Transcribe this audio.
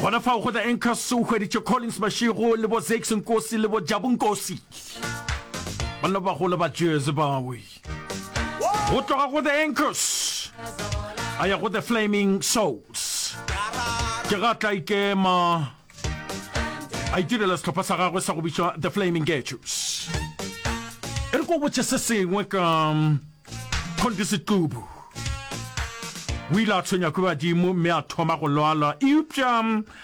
gona fao go tla encas o hweditše collins mašego le bo zakes nkosi le bo jabu nkosi banna bagolo ba jese bawe go tloga go the encas a ya go the flaming souls ke ga tla ikema a itirela sehlopha sa gagwe sa go bitšwa the flaming getus e re ko botse se sengwe ka um, condisitubu o ile a tshwenya ke badimo mme a thoma go lwala eupša um,